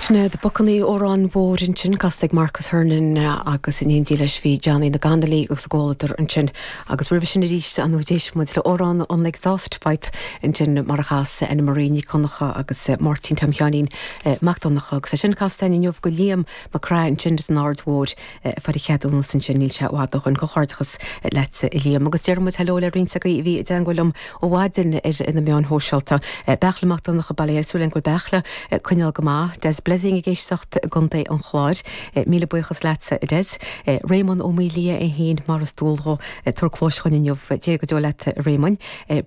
Sin iad Bocannaí Óráin Mhóir ansin, casta ag Marcus Hernon agus in éindí leis bhí Johnny Óg Connolly agus a gcomhluadar ansin. Agus roimhe sin arís ar ndóigh d'éist muid le Amhrán an Exhaust Pipe ansin mar a chas Ann Marie Nic Dhonnacha agus Máirtín Tom Sheáinín Mac Donnacha agus é sin casta againn inniu go Liam Mac Craith ansin as an Aird Mhóir fuair a cheadúnas ansin, níl sé i bhfad ó shoin. Comhghairdeachas leatsa a Liam. Agus déarfaidh muid hello le roinnt agaí a bhí i dteangmháil liom ó mhaidin ar na meáin shóisialta. Beachla Mac Donncha bail ó Dhia air, súil a'm, go bhfuil Beachla ag coinneáil go maith. Des Blessing ag éisteacht i gContae an Chláir. Míle buíochas leatsa a Des. Réamonn Ó Maoildhia é fhéin, mar is dual dhó, ag tabhairt cluais dhúinn inniu. Dia go deo leat a Réamoinn.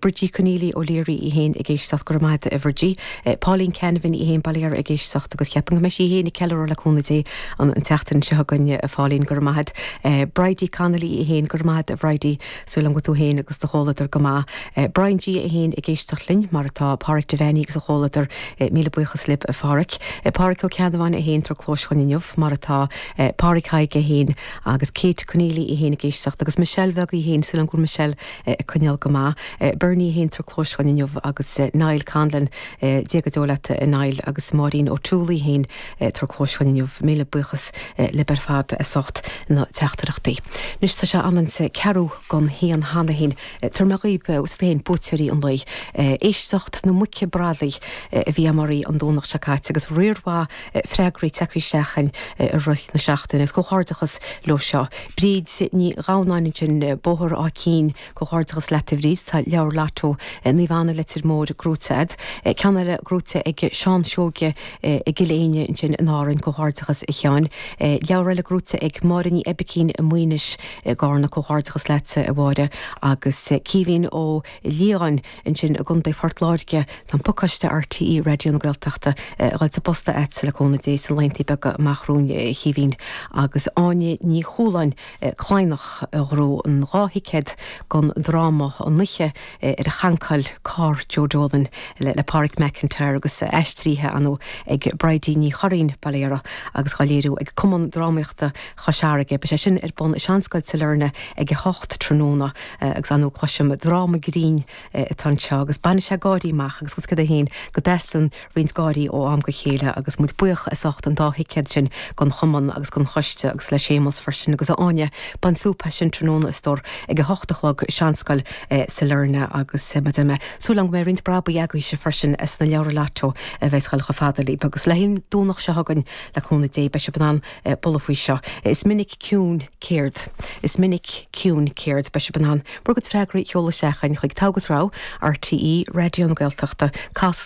Bridie Conneely, O'Leary í fhéin ag éisteacht, go raibh maith a'd a Bhridie. Pauline Canavan í fhéin, bail ó Dhia uirthi ag éisteacht agus ceapaim go mbeidh sí í fhéin ag ceiliúradh le cúnamh Dé an tseachtain seo chugainn a Phauline, go raibh maith a'd. Bridie Connolly í fhéin, go raibh maith a'd a Bhridie, súil agam go tú fhéin agus do chomhluadar go maith. Brian GAA í fhéin ag éisteacht linn, mar atá Páraic Devanney agus a chomhluadar, míle buíochas libh a Pháraic. Pádraic Ó Ceannabháin é fhéin tabhairt cluais dhúinn inniu, mar atá Pádraig Thaidhg é fhéin, agus Kate Conneely í fhéin ag éisteacht, agus Michelle bheag í fhéin, súil agam go bhfuil Michelle. ag coinneáil go maith. Bernie í fhéin tabhairt cluais dhúinn inniu agus Niall Conlon Dia go deo leat a Niall agus Máirín O'Toole í fhéin tabhairt cluais dhúinn inniu Míle buíochas libh ar fad as ucht na teachtaireachtaí. Anois tá sé ionann is a ceathrú gon haon cheana fhéin tabharfaidh mé dhaoibse féin buaiteoirí an lae. Éisteacht na muice bradaí a bhí a'm oraí an Domhnach seo caite agus riar mhaith freagraí teagthaí isteach againn i rith na seachtaine agus comhghairdeachas leo seo. Bríd Ní Ghamhnáin ansin, Bóthar Áth Cinn, Comhghairdeachas leat a Bhríd, tá leabhar Lotto Naomh Anna, Leitir Móir, gnóite agat. Ceann eile gnóite ag Seán Seoige i gCill Éinne ansin in Árainn, comhghairdeachas a Sheáin. Leabhar eile gnóite ag Máire Ní Oibicín i Maínis i gCarna, comhghairdeachas leatsa a Mháire. Agus Caoimhín Ó Liatháin. Ansin i gContae Phort Láirge, tá an pacáiste RTÉ Raidió na Gaeltachta ag dul sa bpost agatsa le cúnamh Dé sna laethanta beaga amach romhainn a Chaoimhín agus Áine Ní Chualáin, Cladhnach, a ghnóthaigh an dhá thicéad don dráma an oíche ar chancáil Carr Joe Dolan le Pádraic McIntyre agus aistrithe ar ndóigh ag Bridie Ní Churraoin, bail ó Dhia uirthi, agus dá léiriú ag Cumann Drámaíochta Chois Fharraige. Beidh sé sin ar bun i Seanscoil Sailearna ag a hocht tráthnóna agus ar ndóigh cloisim dráma grinn atá anseo agus bainfidh sé gáirí amach agus bhuel cad é fhéin go dteastaíonn roinnt gáirí ó am go chéile agus muid buíoch as ucht an dá thicéad sin gon Chumann agus gon Choiste agus le Séamus freisin agus a Áine bain súp as sin tráthnóna a stór ag a hocht a chlog i Seanscoil Sailearna agus mar a deir mé súil agam go mbeidh roinnt brabaigh agaibhse freisin as na leabhra Lotto a bheas ag goil chomh fada libh agus le haghaidh an Domhnach seo chugainn le cúnamh Dé beidh sibh in ann a bualadh faoi seo. Is minic ciúin céard Is minic ciúin céard Beidh sibh in ann bhur gcuid freagraí a sheoladh isteach chuig Togha agus Rogha RTÉ Raidió na Gaeltachta, Cas.